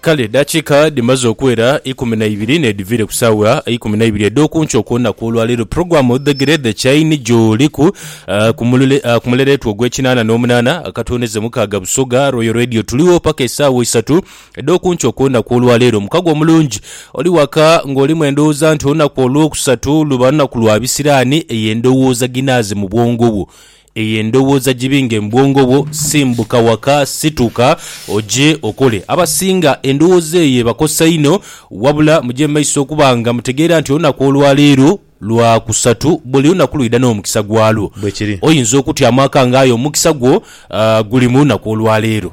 Kale edaakiika dhimaze okuwera ikumi na ibiri n'edhiviire ku sawa eikumi na ibiri edh'oku nkyo ku lunaku olwaleero, pulogulaamu odhegere The Chain gy'oliku ku mulule ku mulereetwa ogw'ekinaana n'omunaana akatondeze mukaaga Busoga Royal Radio. Tuligho paka esaawa isatu edh'oku nkyo ku lunaku olwaleero. Mukago omulungi oli waka ng'olimu endowooza nti olunaku olwokusatu luba lunaku lwa bisiraani, eyo endowooza ginaaze mu bwongo bwo. Eyo endowooza gibinge mu bwongo bwo, simbuka waka, situka oje okole. Abasinga endowooza eyo ebakosa inho. Wabula muje mu maiso okuba nga mutegeera nti olunaku olwa leero Lwakusatu. Buli lunaku lwidha n'omukisa gwalwo. Bwekiri. Oyinza okutyamu akanga aye omukisa gwo guli mu lunaku olwa leero.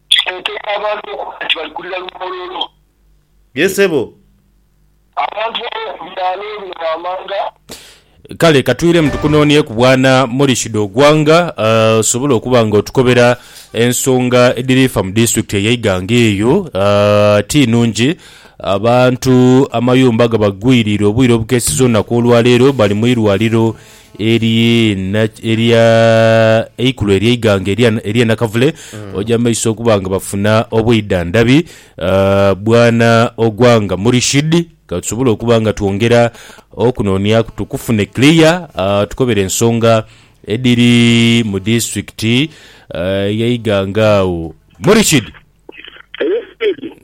Kiteekeibwa abantu okuba nti bali kulira lumoololo. Ye sebo. Abantu ab'oku byalo bino wammanga. Kale ka twiremu tukunoonyeku Bwana Morishid Ogwanga osobole okuba nga otukobera ensonga edhiri fa mu disitulikiti eya Iganga eyo. Ti nnhungi, abantu amayumba gabagwiriire obwire obukeeseza olunaku olwaleero bali mu irwaliro Eri na, eri a, eikulu ery'eighanga erya, erya Nakavule, oja mu maiso okuba nga bafuna obwidhandhabi. A, bwana Ogwanga Murishid, ka tusobole okuba nga twongera okunonyaku tukufune clear, a, tukobere ensonga edhiri mu disiturikiti a, y'eighanga agho. Murishid!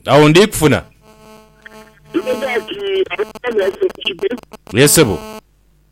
Agho ndi kufuna. Ye, ssebo.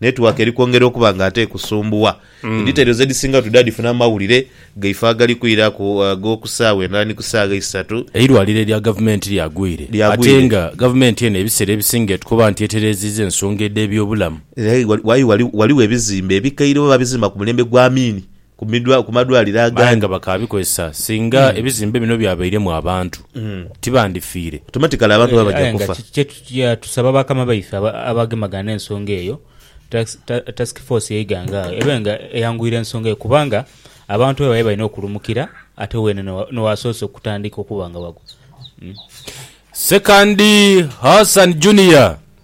Netiwaaka eri kwongera okuba nga ate ekusumbuwa. Editairozi edhisinga oti dhadhifuna mu mawulire gaife agali kwiraku ag'oku saawa endala ni ku saagha eisatu. Eirwaliro erya gavumenti lyagwire ate nga gavumenti eno ebiseera ebisinga etukoba nti etereeziiza ensonga edh'ebyobulamu. Aye ghaligho ebizimbe ebikaire oba baabizimba ku mulembe gwa Amin ku madwaliro agandi. Aye nga bakaabikozesa singa ebizimbe bino byabairemu abantu, tibandifiire? Automatically abantu baba baja kufa. Aye nga tusaba bakama baife abagemagana n'ensonga eyo, Task Force ye Iganga agho ebe nga eyanguyira ensonga eyo kubanga abantu bebayo balina okulumukira ate weene n'owasoose okutandika okuba nga wagwa. Ssekandi Hassan Junior.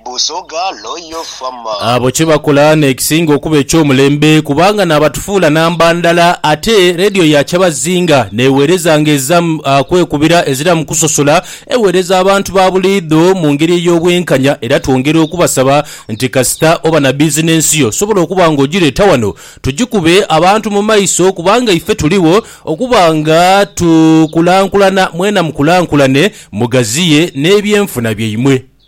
Busoga Royal Farmer. Abo kye bakola n'ekisinga okuba eky'omulembe kubanga naabatufuula namba ndala ate leediyo ya Kyabazinga n'eweereza ng'ezira kwekubira ezira mu kusosola eweereza abantu ba buliidho mu ngeri ey'obwenkanya era twongera okubasaba nti kasita oba na bizinensi yo sobola okuba ng'ogireeta wano tugikube abantu mu maiso kubanga ife tuligho okuba nga tukulankulana mwena mukulankulane mugaziye n'ebyenfuna byaimwe.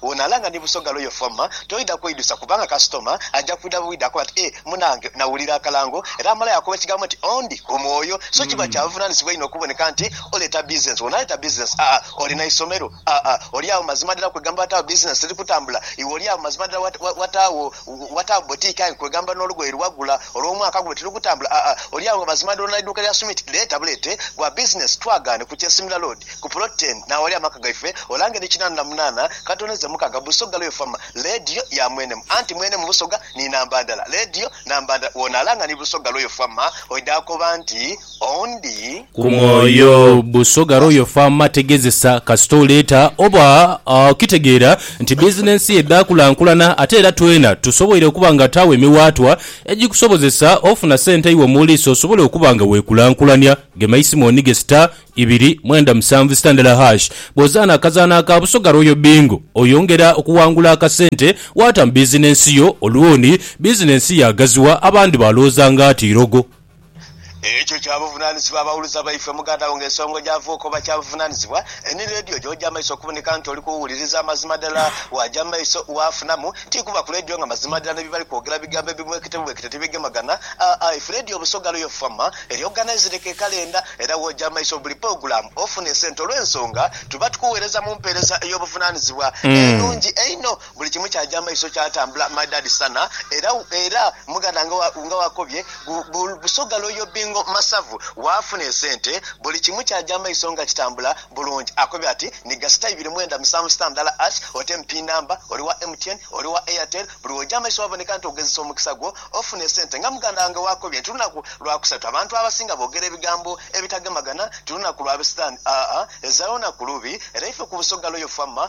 Bw'onaalaa nga ni Busoga Royal Former, toidha kweidhusa kubanga kasitoma aja kwidha bwidha akobe ati, Eeh munaange nawulira akalango! Era amalayo akoba ekigambo nti, Ondi ku mwoyo. So kiba kya buvunaanyizibwa inho okuboneka nti oleeta bizinensi. Bw'onaaleeta bizinensi, aa, olina isomero, aa, oli agho mazima ddala kwegamba wataagho bizinensi teri kutambula, iwe oli agho mazima ddala wataagho Wataagho boutique aye kwegamba n'olugoye lwe wagula olw'omwaka guno tirugutambula aa oli agho mazima doola n'eiduuka lya Sumit leeta buleete gwa bizinensi twagaane ku Kyesimira Road ku Plot ten n'awali amaka gaife olange ni kinaana na munaana katoneze mukaga Busoga Loyal Farmer leediyo ya mwenemu anti mwenemu Busoga ni namba ndala leediyo namba ndala w'onaalanga ni Busoga Loyal Farmer oidha koba nti oundi. Ku mwoyo. Busoga Royal Pharma tegezesa kasita oleeta oba okitegeera nti bizinensi yo edha kulankulana ate era twena tusoboire okuba nga taawo emiwaatwa egikusobozesa ofuna sente iwe mu liiso osobole okuba nga weekulankulania. Gema eisimu onige star ibiri mwenda musanvu star ndala hash. Bw'ozaana akazaanho aka Busoga Royal Bingo oyongera okuwangula akasente waata mu bizinensi yo olwoni bizinensi yaagaziwa abandi baalowooza nga ati irogo. Ekyo kya buvunanizibwa abawuliza baife. Muganda wo nga ensonga ogyava okoba kya buvunanizibwa. Any radio gyoja maiso okuboneka nti oli kuwuliriza amazima dhala, waja maiso wafunamu nti kuba ku radio nga mazima dhala nebibali kwogera bigambo ebibwekete bwekete tibigemagana. Aa if radio busoga lwo yo fama eri ogana ezireka ekalenda era woja maiso buli pogulamu ofuna esente olwensonga tuba tukuwereza mumpereza eyobuvunanizibwa enungi einho. Buli kimu kyaja amaiso kyatambula maidadi sana era era muganda nga nga wakobye bu busoga loyo bingo masavu wafuna esente buli kimu kyaja amaiso nga kitambula bulungi akobye ati ni gasita ibiri mwenda musanvu sita ndala ash ote mpi namba oli wa MTN oli wa Airtel buli woja amaiso waboneka nti ogezesa omukisa gwo ofuna esente nga muganda wange wakobye nti lunaku lwa kusatu abantu abasinga bogera ebigambo ebitagemagana nti lunaku lwa bisitani aa ezaayo naku lubi era ife ku busoga loyo fama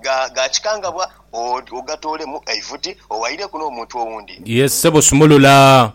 Ga kikangabwa ogatoolemu eivuti owaireku n'omuntu owundi. Ye ssebo sumulula.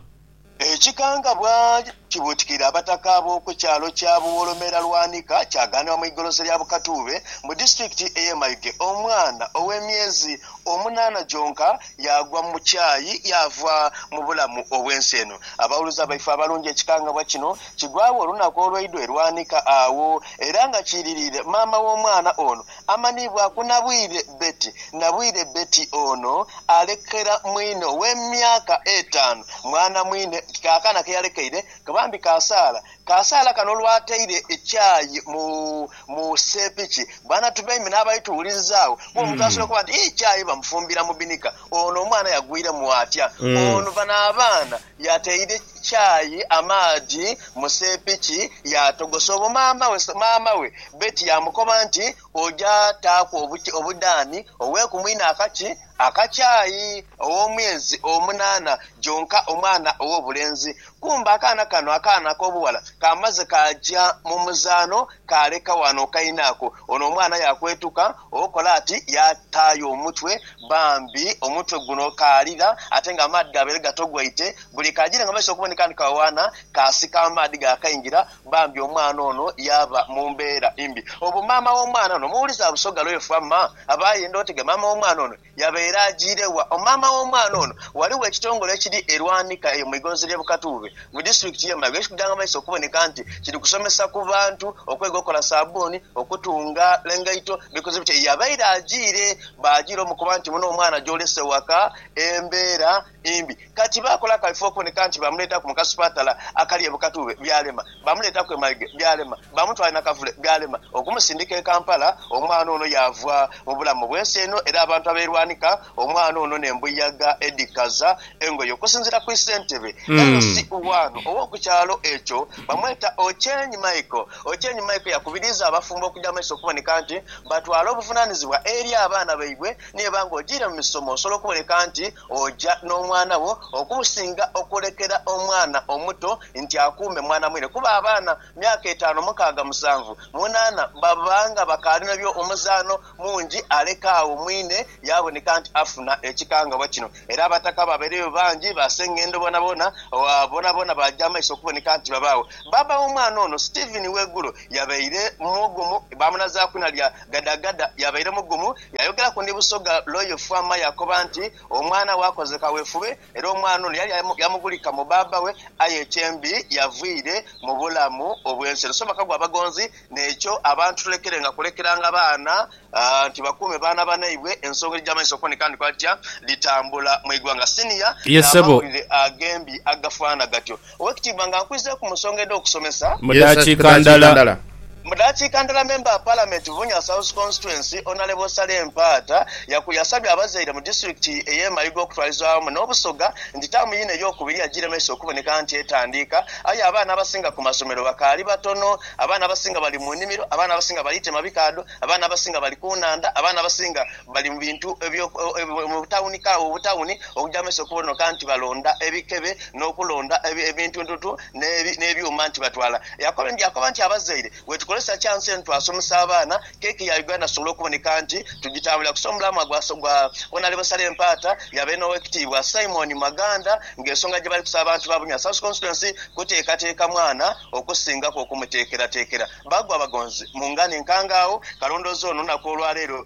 Ekikangabwa kibuutikira abataka ab'oku kyalo kya Buwolomera Lwanika kyagaanibwa mu igolosa lya Bukatuube mu disitulikiti ey'e Mayuge omwana ow'emyezi omunaana gyonka yaagwa mu kyayi yaava mu bulamu obw'ensi eno. Abawuluza baife abalungi ekikangabwa kino kigwagho olunaku olweidho e Lwanika agho era nga kiiririire maama w'omwana ono Amanhibwaku Nabwire Betty Nabwire Betty ono alekera mwine ow'emyaka etaanu mwana mwine kaakana ke yalekeire ke bambi Kasaala. Kasaala kano olwataire ekyayi mu mu seepiki bwana Tubeime n'abaali tuwulirizaawo kuba omuntu asobola okuba nti ii kyayi bamufumbira mu binika ono omwana yagwiremu atya? Ono bano abaana Yateire kyayi amaadhi mu seepiki yaatogosa obwo maama we Betty yaamukoba nti, Oja taaku obudhaani oghe ku mwine akaki aka kyayi ow'omwezi omunaana gyonka omwana ow'obulenzi. Kumbe akaana kano akaana ak'obughala kaamaze kaaja mu muzaano kaaleka wano kaine ako. Ono omwana yaakwetuka Okola ati yaataayo omutwe. Bambi omutwe guno kaalira ate nga amaadhi gaabaire gatogwaite. Buli kaajire nga maiso okuboneka ni kawaana, kaasika amaadhi gaakaingira. Bambi omwana ono yaaba mu mbeera mbi. Obu maama w'omwana ono omuwuliza Busoga lweefa, ma aba ayenda otege maama w'omwana ono Yabaire ajiire wa? O maama w'omwana ono, ghaligho ekitongole ekiri e Lwanika eyo mu igonzi ly'e Bukatuube mu disitulikiti y'e Mayo ekikugya amaiso okuboneka nti kiri kusomesa ku bantu okwega okukola sabbuni, okutunga engaito bikoze bitya. Yabaire ajiire, baajiira omukoba nti muno omwana gy'olese waka embera embi. Kati baakola akaifo okuboneka nti baamuleetaku mu kasupatala akali e Bukatube, byalema. Baamuleetaku e Maige, byalema. Baamutwala e Nakavule, byalema. Okumusindika e Kampala, omwana ono yaava mu bulamu bw'ensi eno era abantu abeerwanika omwana ono n'embuyaga edhikaza engoye. Okusinziira ku ssentebe, LC, waano ow'oku kyalo ekyo bamweta Ochieng Michael, Ochieng Michael yakubiriiza abafumbo okuja mu maiso okuboneka nti batwala obuvunaanizibwa eri abaana baibwe. Niye banga ojiire mu misomo osobola okuboneka nti Oja n'omwana wo okumusinga okulekera omwana omuto nti akuume mwana mwine, kuba abaana myaka etaanu, mukaaga, musanvu, munaana baba nga bakaali nabyo omuzaano mungi, aleka agho mwine yaaboneka nti afuna ekikangabwa kino. Era abataka baabaireyo bangi, baaseng'endo boonaboona, boonaboona baaja amaiso okuboneka nti babaagho. Bbaabba w'omwana ono, Stephen Wegulo, yabaire mugumu, baamunazaaku na lya Gadagada, yabaire mugumu. Yaayogera ku ndi Busoga Royal Farmer yaakoba nti, Omwana we akoze kawefube era omwana ono yali yamubulika mu baaba we aye ekyembi yavwire mu bulamu obw'ensi eno. So bakagwa abagonzi n'ekyo abantu tulekerenga kulekeranga baana nti bakuume baana banaibwe ensonga edhija amaiso okuba nti kandi kwali kutya dhitambula mu igwanga. Senior n'amawulire agembi agafaana gatyo. Owekitiibwa nga nkwizire ku musonga edhokusomesa. Mu dakiika ndala. Mu dakiika ndala memba wa palamenti Bunya South Constituency Onalebo Saleh Mpaata yaku yasabye abazaire mu disitulikiti eye Mayiga okutwaliza awamu n'obusoga nti taamu yino eyokubiri yagiremesa okuboneka nti etandiika aye abaana abasinga ku masomero bakaali batono, abaana abasinga bali mu nimiro, abaana abasinga balitema bikaadho, abaana abasinga bali ku nhandha, abaana abasinga. Bali mu bintu ebyo mu butawuni kaawo butawuni okugya mu maiso okubonoka nti balonda ebikebe n'okulonda ebintuntuntu n'ebyuma nti batwala. Yaakoba nti, Abazaire, bwetukozesa chansi eno twasomesa abaana, keeki ya Uganda tusobola okuboneka nti tugitambuliraku. So mulaamwa gwa Honourable Sale Mpaata yabaire n'Owekitiibwa Simon Maganda ng'ensonga gye bali kusaba abantu ba Bunya South Constituency kuteekateeka mwana okusingaku okumuteekerateekera. Baagwa bagonzi mu ngani nkangaawo kalondoozi ono olunaku olwaleero.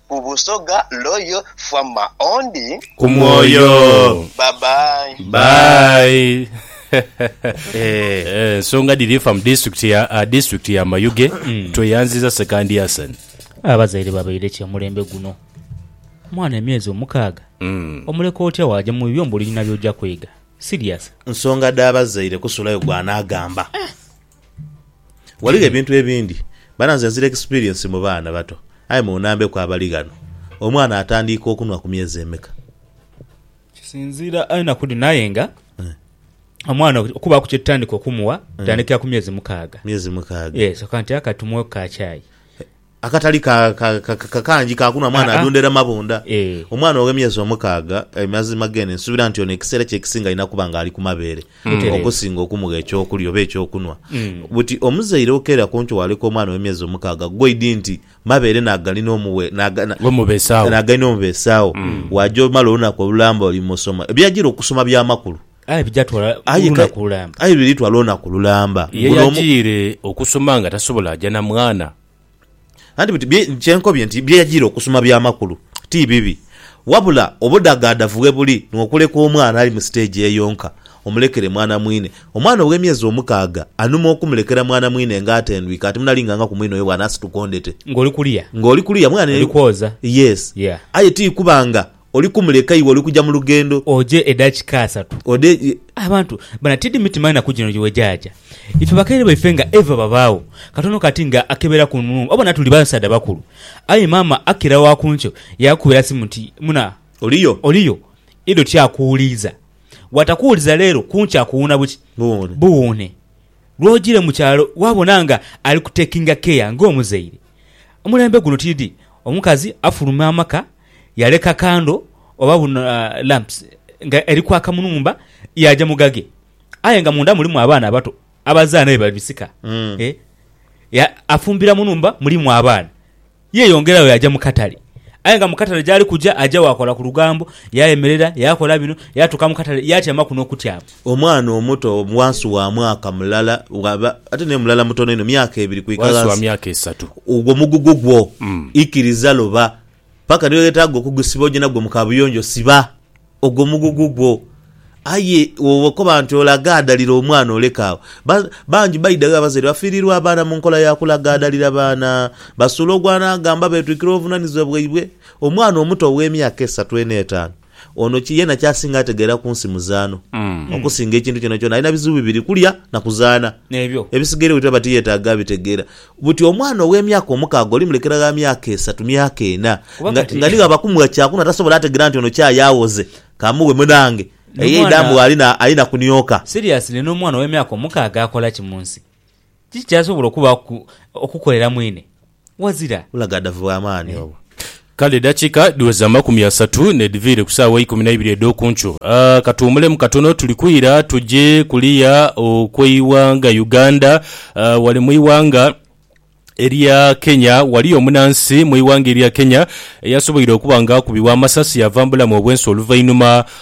Ku Busoga Royal Farmer Ondi. Ku mwoyo. Bye bye. Bye. Ensonga dhiri fa mu district ya district ya Mayuge. Tweyanziza Sekandi Hassan. Abazaire babaire ki omulembe guno? Mwana emyezi omukaaga? Omuleka otya waaja mu bibyo mbu olina byoja kwega? Serious? Nsonga dha bazaire kusulayo gwanagamba. Ghaligho ebintu ebindi bana nze nzira experience mu baana bato aye munambeku abali ghano omwana atandiika okunwa ku myezi emeka? Kisinziira enaku dhino aye nga omwana okubaaku kyetutandika okumuwa tutandikira ku myezi mukaaga. Myezi mukaaga. Yes, oka nti aka tumuweku ka chai. Akatali ka, ka, ka, ka, kangi ka kunhwa mwana Aa-a. adundera mabunda. Ee. Omwana ow'emyezi omukaaga, e, mazima gene nsuubira nti ono ekiseera kye ekisinga alina kuba nga ali ku mabeere Butereevu. okusinga okumugha eky'okulya oba eky'okunhwa. Mm. Buti omuzaire okeera ku nkyo waaleka omwana ow'emyezi omukaaga goidi nti mabeere n'agali n'omuwe, n'aga, na, Omubeesawo. n'agali n'omubeesawo, waaja omala olunaku olulamba oli mu soma. Ebyajira okusoma bya makulu. Aye bijatwala Aye ka- lunaku lulamba. aye biritwala olunaku lulamba Ye Guno omu- yajiire okusoma nga tasobola aja na mwana. anti biti bye- kyenkobye nti byeyajiire okusoma bya makulu ti bibi wabula obudagaadavu webuli nwo okuleka omwana ali mu stage eyo nka omulekere mwana mwine omwana owe myezi omukaaga anuma okumulekera mwana mwine nga atendwike ati munalinganga ku mwine oyo bwanasituka ondete Ngoli kuliya. nga oli kuliya mwana Oli kwoza. yes Yeah. aye ti kuba nga Oli kumuleka iwe oli kuja mu lughendo. Oje edakika asatu. Ode e. Abantu bana tidi mitima enaku jino gye wegyaja. Ife bakaire baife nga eva babaagho katono kati nga akebera ku nhumba obona tuli basaadha bakulu. Aye maama Akira wa ku nkyo yaakubira simu nti, Muna. Oliyo? Oliyo? Ido tyakuwuliiza. Bwatakuwuliza leero, ku nkya akuwuuna buki? Buwuune. Buwuune. Lwojire mu kyalo waabona nga ali kutekinga care ng'omuzaire. Omulembe guno tidi omukazi afuluma amaka. Yaleka kando oba buno lamps nga eri kwaka mu nhumba yaaja mu ghage aye nga munda mulimu abaana abato abazaana aye bali bisika. E ya afumbira mu nhumba mulimu abaana. Yeeyongeragho yaaja mu katale aye nga mu katale gyali kuja aja waakola ku lugambo, yaayemerera, yaakola bino, yaatuuka mu katale yaatyamaku n'okutyama. Omwana omuto wansi wa mwaka mulala ghaba ate naye mulala mutono inho, myaka ebiri kwika Wansi wa ghansi, myaka esatu. ogwo mugugu gwo ikiriza loba Paka ni lwe weetaaga okugusiba oje nagwo mu kabuyonjo, siba ogwo mugugu gwo. Aye bw'oba okoba nti olagaadalira omwana oleka agho. Ba, bangi baidhagho abazaire bafiiriirwa abaana mu nkola ya kulagaadalira baana. Basuula ogw'anaagamba beetwikira obuvunanizibwa bwaibwe. Omwana omuto ow'emyaka esatu eno etaanu, Ono ki yena kyasinga ategeera kunsi muzaano okusinga ekintu kyonakyona. Alina bizibu bibiri kulya na kuzaana. N'ebyo. Ebisigaire buli lwaba tiyetaaga abitegeera. Buti omwana ow'emyaka omukaaga olimulekera gha myaka esatu, myaka ena, Kuba nga, kati. nga ni ghaba kumugha kyakunhwa tasobola ategeera nti ono kyayi aghoze. Kamughe munange. Eyo N'omwana. eidha mugha ali na, ali na kunioka. Seriously n'omwana ow'emyaka omukaaga akola ki munsi? Kiki kyasobola okubaaku okukolera mwine? ghazira. Bulaghadhavu bwa maani obwo. Kale edakika dhiweza amakumi asatu nedhiviire ku saawa eikumi naibiri edhoku nkyo. Katuwumulemu katono tuli kwira tuje kuliya okweighanga Uganda. Wale mwighanga erya Kenya waliyo omunansi mwighanga erya Kenya eyasoboire okuba nga akubibwa amasasi yava mubulamu obwensi oluvainhuma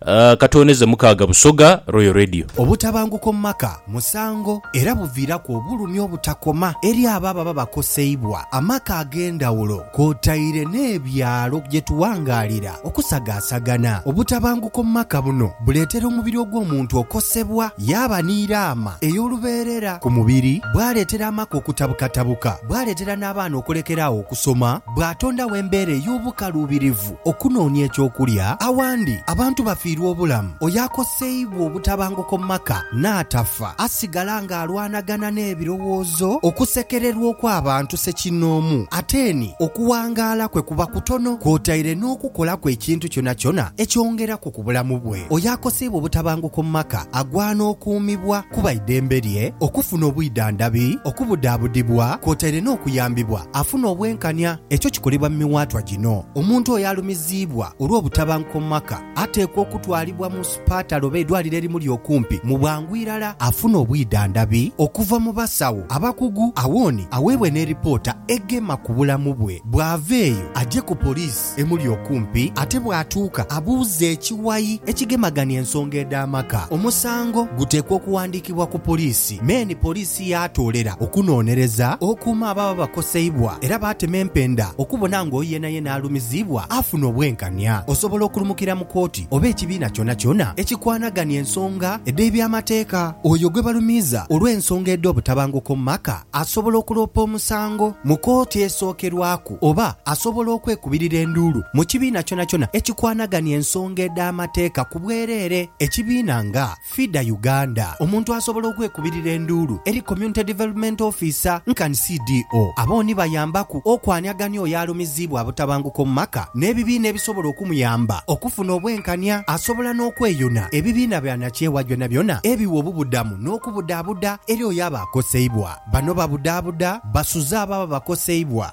Ka twoneze Mukaaga Busoga Royal Radio. Obutabanguko mu maka musango era buviiraku obulumi obutakoma eri abo ababa bakoseibwa. Amaka ag'endhawulo kwotaire n'ebyalo gye tuwangaalira okusagaasagana. Obutabanguko mu maka buno buleetera omubiri ogw'omuntu okosebwa yaaba ni raama ey'olubeerera ku mubiri, bwaleetera amaka okutabukatabuka, bwaleetera n'abaana okulekera agho okusoma, bwatondagho embeera ey'obukaluubirivu. Okunoonia eky'okulya. Awandi, abantu bafiirwa obulamu. Oyo akoseibwa obutabanguko mu maka n'atafa, asigala ng'alwanagana n'ebirowoozo, okusekererwa okw'abantu ssekinnoomu. Ate ni okuwangaala kwe kuba kutono, kwotaire n'okukolaku ekintu kyonakyona ekyongeraku ku bulamu bwe. Oyo akoseibwa obutabanguko mu maka agwana okuumibwa kuba eidembe lye okufuna obwidhandhabi, okubudaabudibwa kwotaire n'okuyambibwa afune obwenkania. Ekyo kikolebwa mu miwaatwa gino. Omuntu oyo alumiziibwa olw'obutabanguko mu maka ateekwa okutwalibwa mu supaatale oba eidwaliro erimuli okumpi mu bwangu irala afune obwidhandhabi okuva mu basawo abakugu awoni aweebwe ne lipoota egema ku bulamu bwe. Bw'ava eyo aje ku poliisi emuli okumpi ate bw'atuuka abuuze ekiwayi ekigemagania ensonga edh'amaka. Omusango guteekwa okuwandiikibwa ku poliisi, me ni poliisi. ti yaatoolera okunoonereza okuuma ababa bakoseibwa era baatema empenda okubona ng'oyo yenayena alumiziibwa afuna obwenkania. Osobola okulumukira mu kooti oba ekibiina kyonakyona ekikwanagania ensonga edh'eby'amateeka. Oyo gwe balumiiza olw'ensonga edh'obutabanguko mu maka asobola okuloopa omusango mu kooti esookerwaku oba asobola okwekubirira enduulu mu kibiina kyonakyona ekikwanagania ensonga edh'amateeka ku bwereere. Ekibiina nga. FIDA Uganda, omuntu asobola okwekubirira enduulu eri Community Development Officer nkan CDO. Abo ni bayambaku okwanhiagania oyo alumiziibwa abutabanguko mu maka n'ebibiina ebisobola okumuyamba okufuna obwenkania. Asobola n'okweyuna ebibiina byanakyewa byonabyona ebiwa obubudamu n'okubudaabuda eri oyo aba akoseibwa. Bano babudaabuda basuze abo ababa bakoseibwa